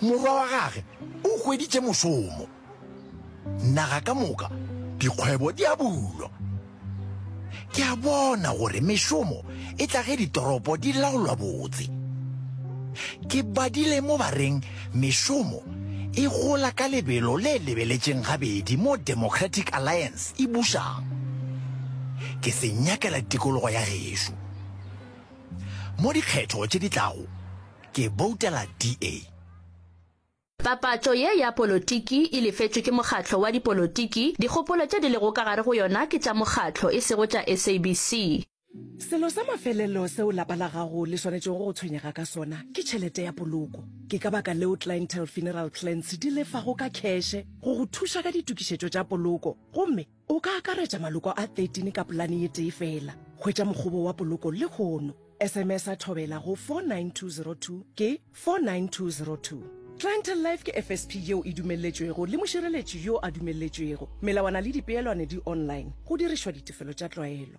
Morwa wa gage o hweditše mošomo. Naga ka moka, dikgwebo di a bulwa. Ke a bona gore mešomo e tla ge ditoropo di laolwa botse. Ke badile mo ba reng mešomo e gola ka lebelo le lebeletšeng gabedi mo Democratic Alliance e bušang. Ke se nyakela tikologo ya gešo. Mo dikgetho tše di tlago, Ke boutela DA. Papatšo ye ya polotiki e lefetšwe ke mokgatlo wa dipolotiki, dikgopolo tše di lego ka gare go yona ke tša mokgatlo e sego tša SABC. Selo sa mafelelo seo lapa la gago le swanetšego go tshwenyega ka sona ke tšhelete ya poloko. Ke ka baka leo Clientele Funeral Plans di lefago ka kheshe go go thuša ka ditokišetšo tša poloko gomme, O ka akaretša maloko a 13 ka polane ye tee fela. Hwetša mokgobo wa poloko lehono. SMS a thobela go 49202 ke 49202. Clientele Life ke FSP yeo e dumelletšwego le mošireletši yo a dumelletšwego. Melawana le dipeelwane di online, go dirišwa ditefelo tša tlwaelo.